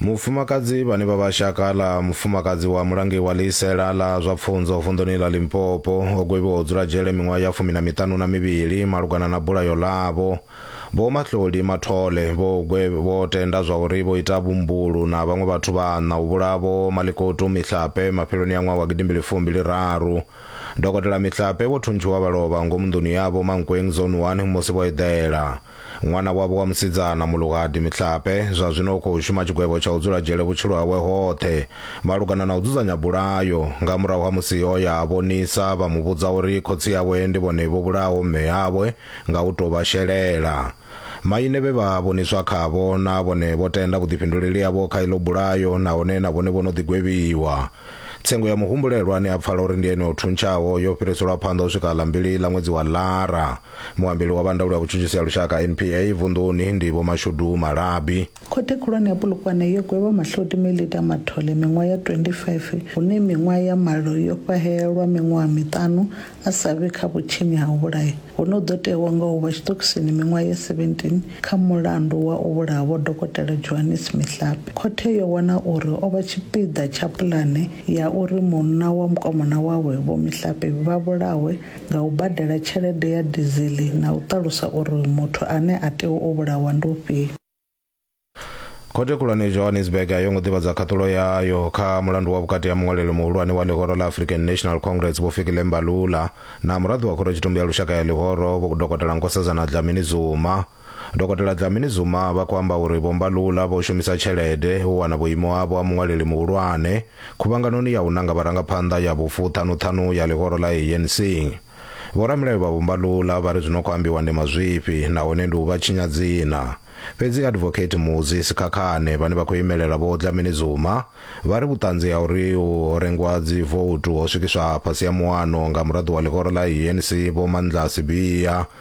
mufumakadzi vhane vha vha shaka ḽa mufumakadzi wa mulangi wa ḽiisela ḽa zwa pfunzo vunḓuni ḽa limpopo o gwevhiwa u dzula dzhele miṅwaha ya fumi na miṱanu na mivhili malugana na bulayo ḽavho vho mahloli mathole vho gwe vho tenda zwa uri vho ita vhumbulu na vhaṅwe vhathu vhaṋa u vhulavo malikotu mihlape mafheloni ya ṅwaha wa gidimbili fumbili raru dokotela mihlape vho thuntshiwa vha lovha ngomu nḓuni yavho mankweng zone 1 musi vho eḓela Ṅwana wavho wa musidzana, Muluhadi Mihlape, zwa zwino u khou shuma tshigwevho tsha u dzula dzhele vhutshilo hawe hoṱhe. Malugana na u dzudzanya bulayo, nga murahu ha musi o ya a vhonisa, vha mu vhudza uri khotsi awe ndi vhone vho vhulahaho mme awe nga u tou vha shelela. Maine vhe vha vhoniswa khavho na vhone vho tenda vhuḓifhinduleli havho kha iḽo bulayo nahone na vhone vho no ḓi gwevhiwa. Tsengo ya muhumbulelwa ane a pfala uri ndi ene o thuntshaho yo fhiriselwa phanḓa u swika ḽa mbili ḽa ṅwedzi wa Lara. muambeli wa vha ndaulo ya vhutshutshisi ya lushaka npa vunḓuni ndi vho mashudu malabi khothe khulwane ya pulukwane yo gwevha mahloti melita mathole miṅwaha ya 25 hune miṅwaha ya malo yo fhahelelwa miṅwaha miṱanu a sa vhe kha vhutshinyi ha u vhulaya hune u ḓo tewa nga u vha tshiṱokisini miṅwaha ya 17 kha mulandu wa u vhulaha vho dokotela johannes mihlape khothe yo wana uri o vha tshipiḓa tsha pulane ya uri munna wa mukomana wawe vho mihlape vha vhulawe nga u badela tshelede ya dizili na u ṱalusa uri muthu ane a tea u vhulawa ndi ufhio. Khothe Khulwane ya Johannesburg a yo ngo ḓivhadza khaṱulo yayo kha mulandu wa vhukati ha muṅwaleli muhulwane wa ḽihoro ḽa African National Congress Vho Fikile Mbalula na muraḓo wa Khorotshitumbe ya Lushaka ya Ḽihoro Vho Dokotela Nkosazana Dlamini Zuma. Dokotela Dlamini-Zuma vha khou amba uri Vho Mbalula vho shumisa tshelede u wana vhuimo havho ha muṅwaleli muhulwane khuvhanganoni ya u nanga vharangaphanḓa ya vhufuṱhanuṱhanu ya ḽihoro ḽa ANC. Vhoramilayo vha Vho Mbalula vha ri zwi no khou ambiwa ndi mazwifhi nahone ndi u vha tshinya dzina. Fhedzi Advocate Muzi Sikhakhane vhane vha khou imelela Vho Dlamini-Zuma vha ri vhuṱanzi ha uri ho rengwa dzivoutu ho swikiswa fhasi ha muano nga muraḓo wa ḽihoro ḽa ANC Vho Mandla Sibiya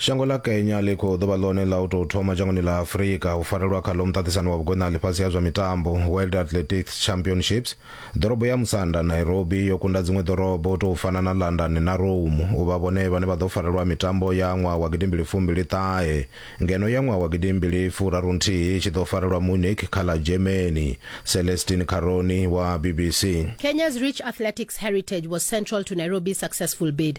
shango ḽa kenya ḽi khou ḓovha ḽone ḽa u tou thoma dzhangoni ḽa afurika u farelwa khaḽo muṱaṱisano wa vhugona ḽifhasi ha zwa mitambo world athletics championships ḓorobo ya musanda nairobi yo kunda dziṅwe ḓorobo u tou fana na london na rome u vha vhone vhane vha ḓo farelwa mitambo ya ṅwaha wa gidimbili fumbili ṱahe ngeno ya ṅwaha wa gidimbili furaru nthihi tshi ḓo farelwa munich kha ḽa germany celestin caroni wa bbc Kenya's rich athletics heritage was central to Nairobi's successful bid.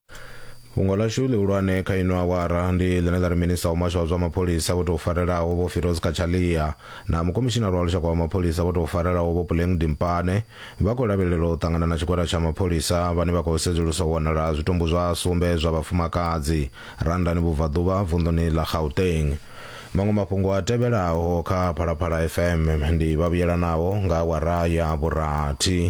fhungo lashu lihulwane kha ino awara ndi ḽine ḽa ri minista wa muhasho wa zwa mapholisa vho tou farelaho vho firoz kachalia na mukomishinara wa lushaka wa mapholisa vho tou farelaho vho puleng dimpane vha khou lavhelelwa u ṱangana na tshigwada tsha mapholisa vhane vha khou sedzulusa u wanala zwitumbu zwa sumbe zwa vhafumakadzi randani vhubvaḓuvha vunḓuni ḽa gauteng maṅwe mafhungo a tevhelaho kha phalaphala fm ndi vhavhuyelanaho nga awara ya vhurathi